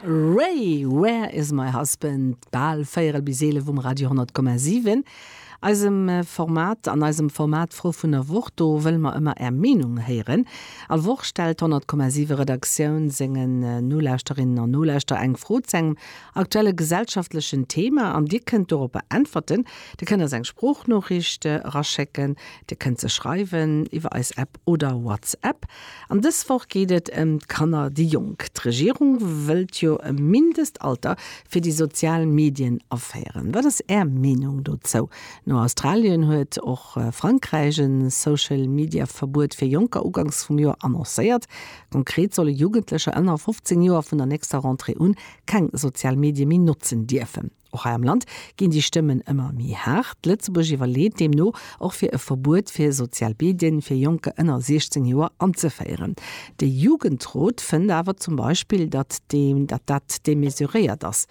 Ray, Where is my husband? Bal véierel bis eelef um Radio 10,7, eisem Format. An eisem Format D'Fro vun der Woch, do wëlle mer ëmmer Är Meenung héieren. All Woch stellt d'100,7 Redaktioun sengen Nolauschterinnen an Nolauschterer eng Fro zu engem aktuelle gesellschaftlechen Thema an Dir kënnt doropper äntwerten. Dir kënnt eis eng Sproochnoriicht eraschécken, Dir kënnt se schreiwen iwwer eis App oder WhatsApp. An dës Woch geet et ëm d'Kanner, déi Jonk. D'Regierung wëllt jo e Mindestalter fir déi sozial Medien aféieren. Wat ass Är Meenung dozou? No Australien huet och Frankräich e Social-Media-Verbuet fir Jonker uganks vum Joer annoncéiert. Konkret solle Jugendlecher ënner 15 Joer vun der nächster Rentrée un keng sozial Medie méi notzen dierfen. Och hei am Land ginn déi Stëmmen ëmmer méi haart. Lëtzebuerg iwwerleet deemno och fir e Verbuet fir sozial Medien fir Jonker ënner 16 Joer anzeféieren. De Jugendrot fënnt awer zum Beispill, datt dat demesuréiert ass.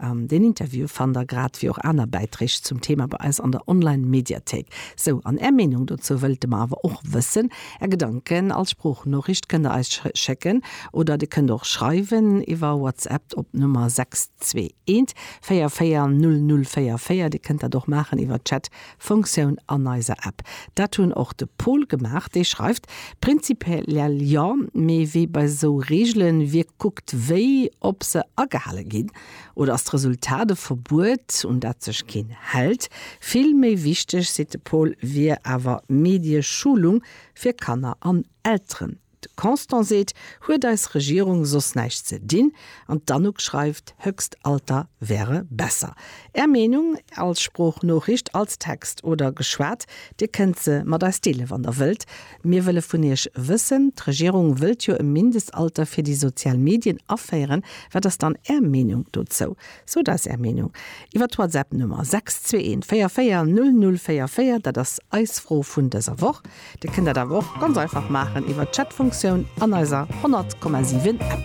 Deen Interview fannt der grad wéi och aner Bäiträg zum Thema bei eis an der Online-Mediathéik. Sou, an Är Meenung dozou wëlte mer awer och wëssen. Är Gedanken als Sproochnoriicht kënnt der eis schécken oder Dir kënnt och schreiwen iwwer WhatsApp op d'Nummer 6. Zwee eent véier véier null null véier véier. Dir kënnt dat och maachen iwwer d'Chat Fonctioun an eiser App. Dat hunn och de Paul gemaach. Dee schreift, Prinzipiell jo, mee wee bei esou Reegelen wierkt kuckt wéi ob se agehale ginn. Oder ass d'Resultat e Verbuet un dat sech keen hält. Vill méi wichteg, seet de Paul, wier awer Medieschulung fir Kanner an Elteren. De Constant seet, huet eis Regierung soss näischt ze dinn? An d'Anouk schreift, Höchst Alter wäre besser. Är Meenung als Sproochnoriicht, als Text oder geschwat? Dir kënnt se mat eis deele wann der wëllt. Mir wëlle vun iech wëssen, d'Regierung wëllt jo e Mindestalter fir déi sozial Medien aféieren, wat ass dann är Meenung dozou? Sot eis Är Meenung iwwer d'Whatsapp-Nummer 621440044, dat ass eis Fro vun dëser Woch. Dir kënnt dat awer och ganz einfach maachen iwwer d'Chat-Funktioun an eiser 100,7 App.